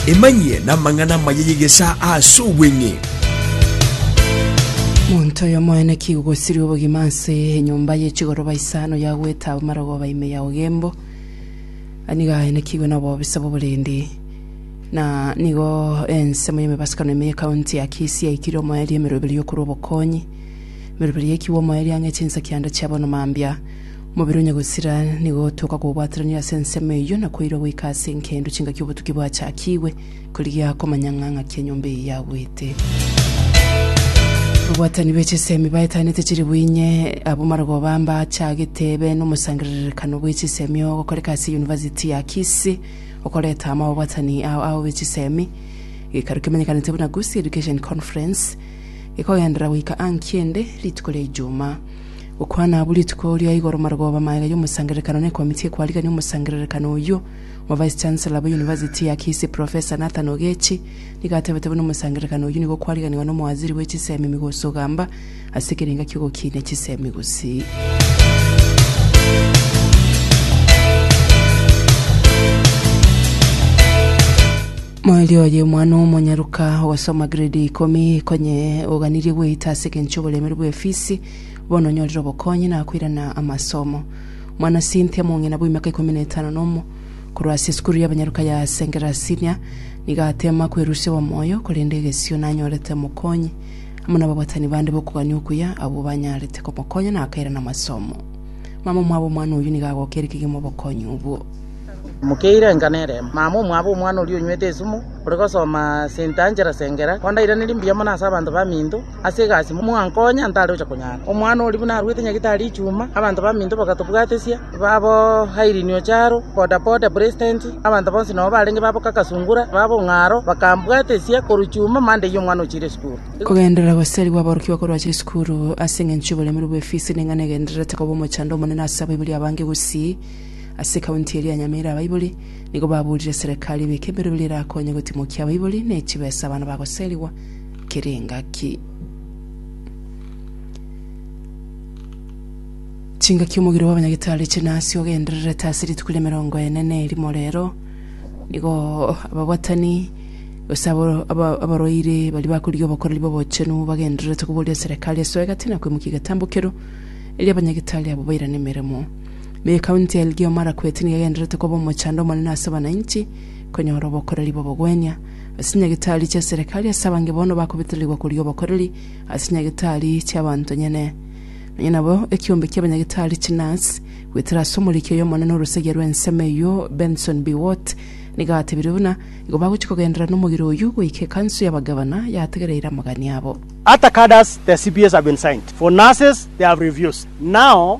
Emanyie namang'ana amaya y'egesaa ase obweng'e. Monto oyomoene kigogosiria obogima ase enyomba ye chigoroba isano ya goeta abamarogooba ime ya ogembo. Nigo aye nakigwe na obobisa bw'oborendi. Na nigo ensemo y'emebasukano ime ye county ya Kisii yaikire omoerio emeroberi yokorwa obokonyi. Emeroberi ye kiwomo eria ang'e chinsa kianda chia bono mambia. Omobere onye gosira nigo toka kobwatranire ase ensemo eyio na koirwa goika ase enkendu chingaki obotuki bwachakigwe, korigia komanya ng'a ng'aki enyomba eyio yagwete. Ababwatani be chisemi baetanete chiri bwinye abo marogoba mbachagete ebe nomosangererekano bwe chisemi ogokoreka ase University ya Kisii okoreta amo ababwatani ao ao be chisemi. Gekaru kemenyekanete buna Gusii Education Conference Gekogenderera goika aa nkiende, rituko ria Ijumaa. Gokwana abwo rituko ria igoro marogoba magega y'omosangererekano n'ekomiti ekwarigania omosangererekano oyio, Omovice Chancellor bwa University ya Kisii Professor Nathan Ogechi nigo atebeete buna omosangererekano oyio nigo okwariganiwa n'omowaziri bwe chisemi Migosi Ogamba ase ekerenga ki'ogokinia chisemi Gusii. Moerio oye omwana omonyaruka ogosoma grade ya ikomi, konye oganirie gweita ase engencho y'oboremeri bw'efisi, bono onyorire obokonyi na koirana amasomo. Mwana Cynthia mong'ina bw'emiaka ikomi na etano na omo, korwa ase esukuru y'abanyaruka ya Sengera Senior, nigo ateema kwerusia obomoyo, korende egesio nanyorete omokonyi amo n'ababatani bande b'okogania okuya abwo banyarete komokonya na akairana amasomo. Mama omwabo omwana oyio nigo agokeire kegima obokonyi obwo. Mokeire enka nere mama omwabo omwana oria onywete esumu, ore gosoma sente anchera sengera, ondairanerie mbuya mono ase abanto baminto ase egasi mwankonya ntare ocha konyara. Omwana oria buna aruete nyagitari echuma, abanto baminto bagatobwatesia, babo Irene Ocharo, Boda Boda President, abanto bonsi nobo barenge babo Kaka Sungura, babo Ong'aro, bakambwatesia korwa chuma mande eyio omwana ochire esukuru. Kogenderera gosarigwa aborokigwa korwa achire esukuru ase engencho y'oboremiri bw'efisi ning'ana egendererete koba omochando omonene ase abaibori abange gusii. Ase ekaunti eria ya Nyamira abaibori nigo baburire serekari ebeke emerwe eria erakonye gotimokia abaibori ne chibesa abana bagoserigwa kera engaki. Chingaki omogiro bw'abanyagitari chinasi ogendererete ase rituko ria emerongo ene na erimo rero nigo ababwatani gose abaroiri baria bakorigia obokoreri bw'obochenu bagendererete koboria serekari esoe gati na koimokia egetambo kereo erio abanyagitari abo bairane emeremo. Na ekaunti y'Elgeyo Marakwet nigo egendererete koba omochando omonene ase abananchi konyora obokoreri bw'obogwenia ase nyagitari chia serikali ase abange bono bakobetererigwa koria obokoreri ase nyagitari chi'abanto nyene. Nonya nabo ekiombe ki'abanyagitari chinurse goetera ase omoriki oyo omonene orosagia rw'ensemo eyio Benson Biwott nigo atebirie buna igo bagochia kogenderera nomogera oyio goika ekanso y'abagavana yategereire amagani abo. Attack orders their CPS have been signed for nurses they have refused now.